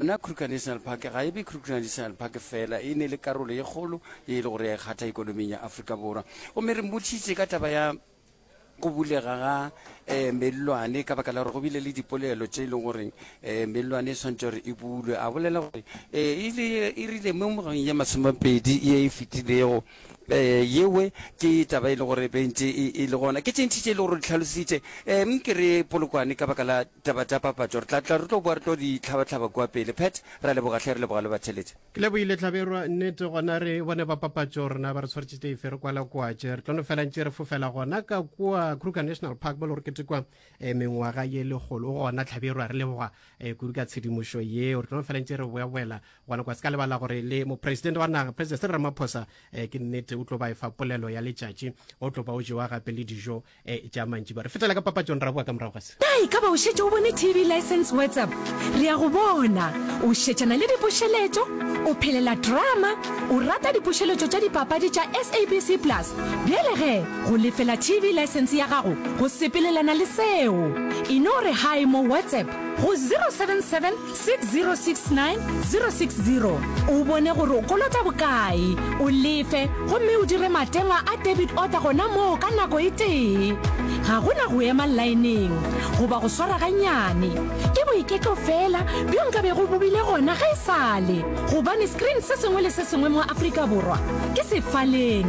Na Kruger National Park ga e be Kruger National Park fela, e ne le karolo ye kgolo ye e le gore ya e kgatha ekonoming ya Afrika Borwa. Gomme re mmotšitše ka taba ya go bulega ga eh, mellwane ka baka la gore go bile le dipolelo tše e leng gore eh, mellwane e swantse gore e bulwe. A bolela gore eh, e le e rile mo ngwageng ya masomepedi ye e fetilego eh, yewe ke taba e le gore bentse e, e le gona ke tše ntši tše e le gore di tlhalositše eh, ke re polokwane ka baka la Taba tša papatšo re tla tla re tlo boa re tlo di hlaba-hlaba kua pele. Pat, Re a leboga hle, re leboga le batheletše. Ke lebohile Hlaberwa, nnete gona re bone ba papatšo rena ba re tshwaretše teife re kwala kua tše re tlo no fela ntše re fofela gona ka kua Kruger National Park mo le gore ketekwa eh, mengwaga ye lekgolo. O gona Hlaberwa, re leboga eh, kudu ka tshedimošo yeo. Re tlo no fela ntše re boya-boyela gona kua. Se ka lebala gore le Mopresidente wa naga President Cyril Ramaphosa eh, ke nnete o tlo ba efa polelo ya letšatši o tlo ba o jewa gape le dijo e tša mantši ba re fetela ka papatšong ra boa ka morago ga se na e ka ba o šetše o bone tv license whatsapp re ya go bona o šetšana le dipošeletšo o phelela drama o rata dipošeletšo tša dipapadi tša sabc plus bjale ge go lefela tv license ya gago go sepelelana le seo e no re hi mo whatsapp go 077 6069 060 o bone gore o kolota bokae o lefe gomme o dire matengwa a debit order gona moo ka nako e tee ga go na go ema laeneng goba go swara ganyane ke boiketlo fela bjo nka be go bobile gona ga e sale gobane screen se sengwe le se sengwe mo afrika borwa ke sefaleng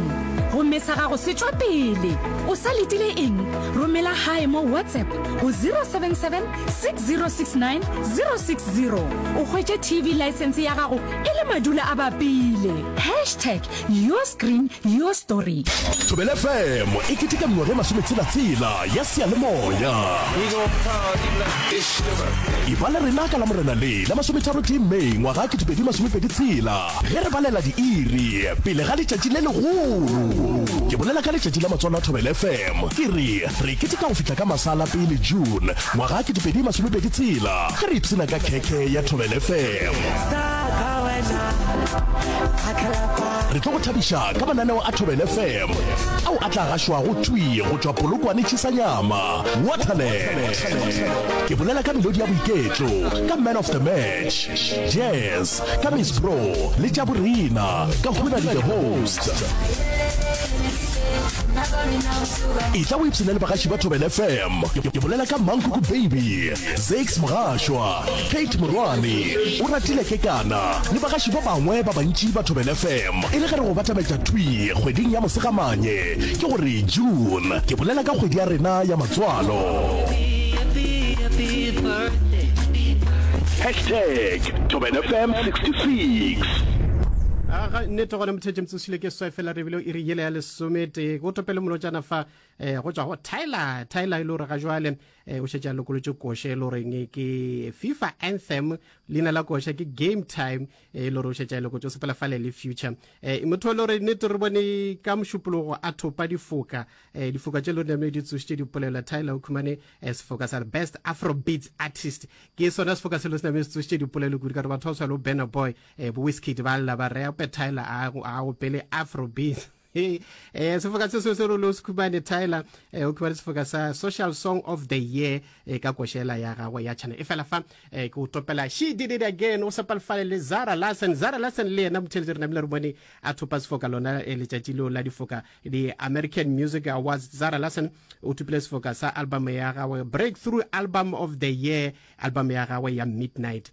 gomme sa gago se tšwa pele o sa letile eng romela gae mo whatsapp go 077 6069060 o hwetše tv license ya gago e le madula a bapile hashtag your screen your story thobele fm e keteka mengwaga e masometshelatsela ya seyalemoya e ba le rena ka la morena le la masometharo tee may ngwaga 2026 ge re balela diiri pele ga letšatši le legolo ke bolela ka letšatši la matswalo a thobele fm ke re Re keteka go fihla ka masala pele June ngwaga ke 2020 tshela ge re ipshina ka khekhe ya Thobel FM. Re tlo go thabiša ka mananeo a Thobel FM ao a tla gašwago thwi go tšwa Polokwane Chisanyama, Waterland. Ke bolela ka melodi ya boiketlo, ka Man of the Match, Jazz, ka Miss Bro le Tša Borena ka Huna le The Host. e tla o ipshina le bagaši ba thobel fm ke bolela ka mankoko baby zax mogašwa kate morwane o ratile ke kana le bagaši ba bangwe ba bantši ba thobel fm e le ge re go batabetša thwi kgweding ya mosegamanye ke gore june ke bolela ka kgwedi ya rena ya matswalo hashtag thobel fm 66 aga nnete gona mothetše thile ke swa fela re bile o iri yele ya lesometee go topele molotšana fa um go tswa go tyler tyler e le gore ga jwale um eh, o šetse a lokolotše koše e le goreng ke fifa anthem leina la koša ke game time eh, e le gore o šetse a lokotše o sepela fale le future um eh, motho e le gore nete re bone ka mošupologo a thopa difoka um difoka tše e le gore name di tsošitše dipolelela tyler o khumane um sefoka sa best afrobeats artist ke sona sefoka se le se name se tsošitše dipolelo kudu ka gore batho ba tshwalo banner boy Eh, bo Wizkid ba lla ba rea pe Tyler a go a go pele Afrobeat. Eh, eh sefoka se se se rolo se khubane Tyler eh o khubane sefoka sa Social Song of the Year eh ka koshela ya gagwe ya channel. E fela fa eh ke o topela She Did It Again o sepalfale le Zara Larsen. Zara Larsen le yena motheletse rena bile re bone a thopa sefoka lona eh, letšatši leo la difoka di American Music Awards. Zara Larsen o thupile sefoka sa album ya gagwe Breakthrough Album of the Year, album ya gagwe ya Midnight.